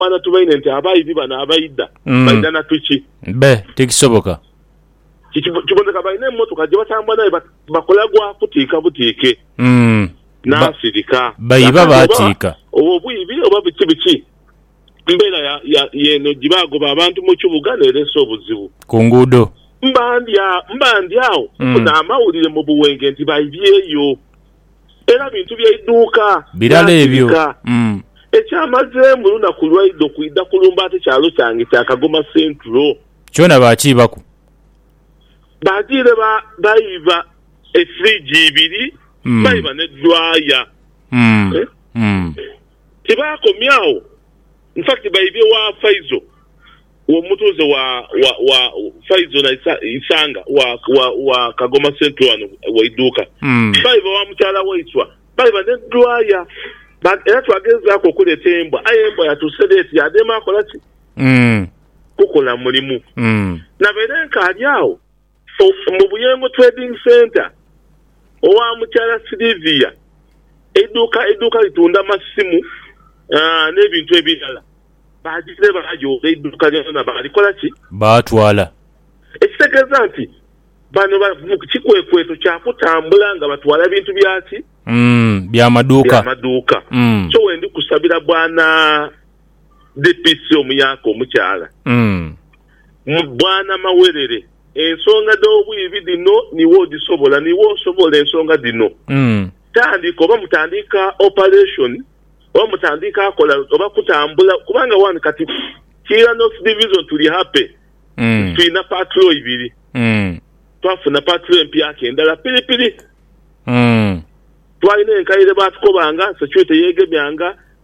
Bana tubaine nti abaibi bano abaidha baidha na piki. Be, tikisoboka. Kiboneka balina emotoka gye batambula naye but bakola gwa kutiika butiike. N'asirika. Baiba baatiika. Oba obwiibi oba biki biki mbeera ya, ya, y'eno gye bagoba abantu mu kibuga n'ereesa obuzibu. Ku nguudo. Mba ndi agho, mba ndi agho nfuna amawulire mu buwenge nti baibyeyo. era bintu bya idhuuka Birala ebyo. naasirika. Mm. Ekyamazeemu lunaku lwaidho kwidha kulumba ate kyalo kyange kya Kagoma Central. Kyona baakiibaku. Baadhire ba, baiba efridge ibiri, Mm. baiba ne dryer. Mm. Eh? Mm. Tibaakomya agho. In fact baibye wa Faizo. Omutuuze wa wa wa Faizo na Isa, Isanga wa wa wa Kagoma Central wano Waiduuka baiba wa mukyala waiswa baiba ne dhwaya ba era twagezaaku okuleta embwa aye embwa yatuuse dha eti yaadema akola ki? Kukola mulimu. Nabaire nkaali agho. Mu Buyengo Trading Centre owa Mukyala Sylivia, eiduuka eiduuka litunda masimu n'ebintu ebirala, baagire baayoola eiduuka lyonalyona baalikola ki? Baatwala. Ekitegeeza nti bano bali mu kikwekweto kya kutambula nga batwala bintu bya ki? Bya maduuka. Bya maduuka. So wendi kusabira Bwana DPC omuyaka omukyala. Bwana Mawerere, ensonga dh'obwibi dhino niiwe odhisobola, niiwe osobola ensonga dhino. Tandika oba mutandiika operation oba mutandiika kola oba kutambula kubanga wano kati Kiira North Division tuli happy nti tulina patrol ibiri. Twafuna patrol empyaka endala piripiri. Twalina enkaire baatukoba nga security yeegemya nga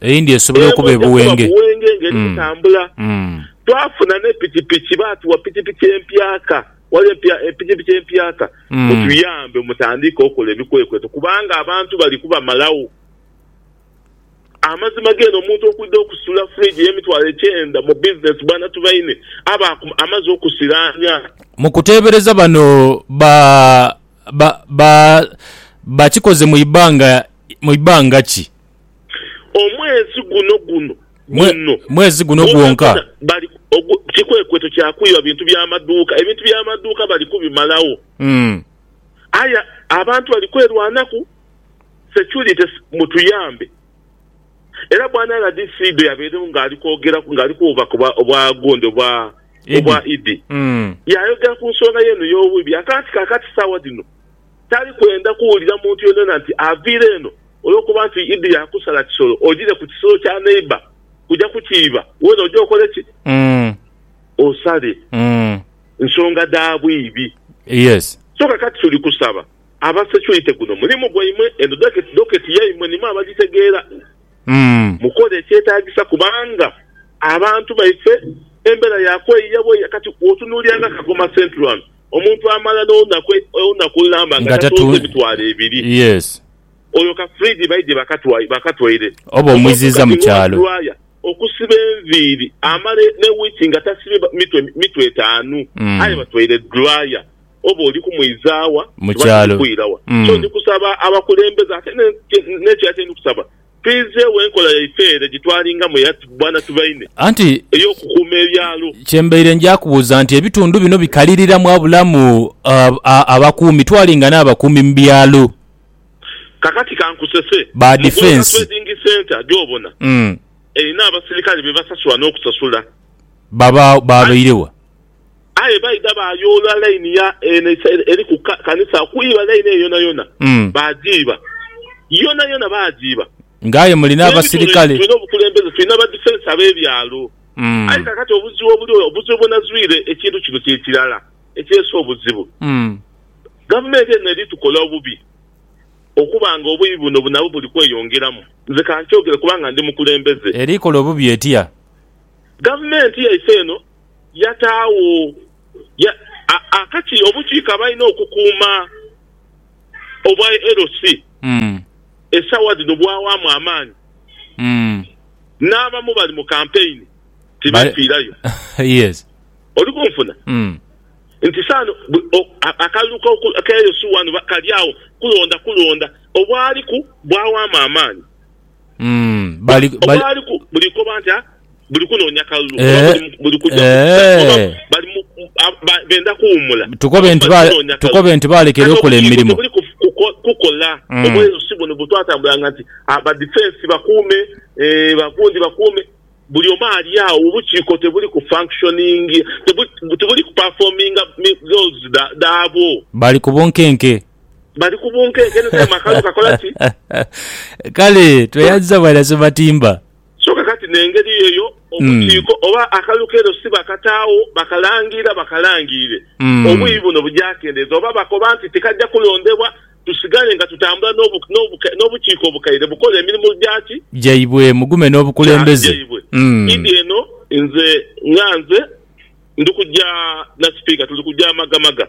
Eyindi esobola okuba ebuwenge. Buwenge ng'eri kutambula. Twafuna ne pikipiki, baatuwa pikipiki empyaka. Ghaligho pikipiki empyaka. Mutuyambe mutandiike okola ebikwekweto kubanga abantu bali kubamalagho. Amazima geene omuntu okwidha okusula fridge ey'emitwalo ekyenda mu bizinesi bwana Tubaine aba amaze okusiraanya. Mu kuteebereza bano ba ba ba bakikoze mu ibanga mu ibanga ki? Omwezi guno guno guno. Mwezi guno gwonka. Bali kikwekweto kya kwiba bintu bya maduuka. Ebintu bya maduuka bali kubimalagho. Aye abantu bali kwerwanaku. Security mutuyambe. Era bwana rdc bwe yabeerewo ng'ali kwogeraku ng'ali kuwuubaku obwa gundi obwa obwa Idi, yaayogera ku nsonga yeeno y'obwibi. Ate anti kaakati saawa dhino. tali kwenda kuwulira muntu yonayona nti aviire eno olwokuba nti Idi yaakusala kisolo ojiire ku kisolo kya neighbour kuja kukiiba, weena oje okole ki? Osale. Nsonga dha bwiibi. So kakati tuli kusaba aba security guno mulimu gwaimwe eno docket yaimwe nimwe abagitegeera, mukole ekyetaagisa kubanga abantu baife embeera ya kweyiya bweyiya. Kati bwotunuulira nga Kagoma Central wano Omuntu amala n'olunaku olunaku olulamba nga tatunze emitwalo ebiri. Yes. Oyo ka fridge baidhye bakatwaire bakatwaire. Oba omwiziiza mu kyalo. Omuntu kati wa dryer okusiba enviiri amala ne week nga tasibye mitwe mitwe etaanu aye batwaire dryer. Oba oli kumwizaawa? Mu kyalo. Oba kiri kwirawa? So ndi kusaba abakulembeze ate n'ekirala kye ndi kusaba. Twiizeegho enkola yaife ere gye twalingamu eya bwana tubaine, Anti ey'okukuuma ebyalo. kye mbaire nja kubuuza nti ebitundu bino bikalirira mwabulamu abakuumi? Twalinga n'abakuumi mu byalo. Kakati kankusese, Ba mu Goloka defence. Trading Centre gy'obona, erina abasirikale be basasula n'okusasula. Babaawo, babaire wa? Aye baidha baayoola laini ya Enesa eri ku kanisa okwiiba laini eyo yonayona. Baagiiba. Yonayona baagiiba. Nga aye mulina abasirikale. Tulina obukulembeze, tulina ba defence ab'ebyalo. Aye kaakati obuzibu obuliwo, obuzibu bwe nazwire ekintu kino kye kirala ekireese obuzibu. Gavumenti eno eri tukola obubi okuba nga obuibi buno nabwo buli kweyongeramu. Nze ka nkyogere kubanga ndi mukulembeze. Eri kola obubi etya? Gavumenti yaife eno yataagho akati obukiiko abalina okukuuma obwa LC esaawa dhino bwawaamu amaani n'abamu bali mu kampeyini tibeefiirayo. Oli kunfuna? Nti saano akalulu ka LC wano kali agho kulonda kulonda obwaliku bwawaamu amaani. Mm, bali, Oba bali, ali ku buli koba nti ah, buli kunoonya kalulu Eh, oba buli- buli kugya eh. oba bali mu- mu- a- ba- benda kuwumula Tukobe Oba nti bali ba- kunoonya kalulu. tukobe nti baalekera Kati okola obuyingo emirimo. tebuli ku- kuko- kukola Mm. obweyo si buno bwetwatambulanga nti ah, ba defense bakuume eh, bagundi bakuume buli omu ali awo obukiiko tebuli ku functioning tebuli, tebuli ku performinga mi- roles dha- dhaabwo bali ku bunkenke. Bali ku bunkenke inho kale makalu kakola ki? Kale tweyanziza bwana Ssematimba. So kakati n'engeri eyo obukiiko oba akalukero si bakataagho bakalangiira bakalangiire obwiyi buno bugyakendeeza oba bakoba nti tikajja kulondebwa tusigale nga tutambula n'obukiiko obukaire bukola emirimu gya ki? Gyaibwe mugume n'obukulembeze idi eno nze nga nze ndi kugya Nasipiika tuli kugya magamaga.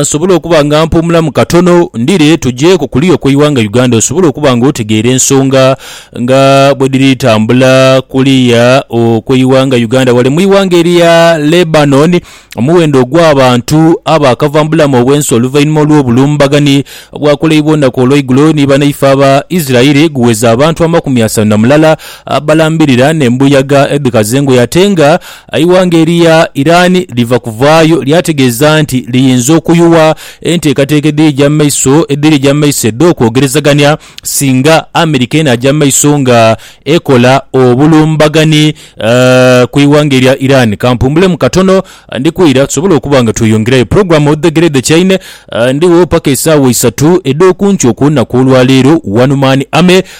nsobola okuba nga mpuumulamu katono, ndhire tuje ku kuliya okw'eighanga Uganda osobole okuba nga otegeera ensonga nga bwedhiri tambula kuliya okw'eighanga Uganda. Ghale mu ighanga erya Lebanon, omuwendo ogw'abantu abaakava mu bulamu obw'ensi oluvainhuma olw'obulumbaghani obwakoleibwa olunaku olweigulo ni banaife aba Israeli guweza abantu amakumi asanu na mulala abalambirira n'embuyaga edhikaza engoye ate nga Eighanga eria Iran liva kuvaayo lyategeeza nti liyinza okuyuwa enteekateeka edhirija mu maiso edhirija mu maiso edh'okwogerezagania singa America enaaja mu maiso nga ekola obulumbagani ku ighanga erya Iran. Kampumbulemu katono ndi kwira tusobole okuba nga tweyongerayo. Program Odhegere Dhekyaine, ndigho paka esaawa isatu edh'okunkyo okw'olunaku olwaleero. One Man Army.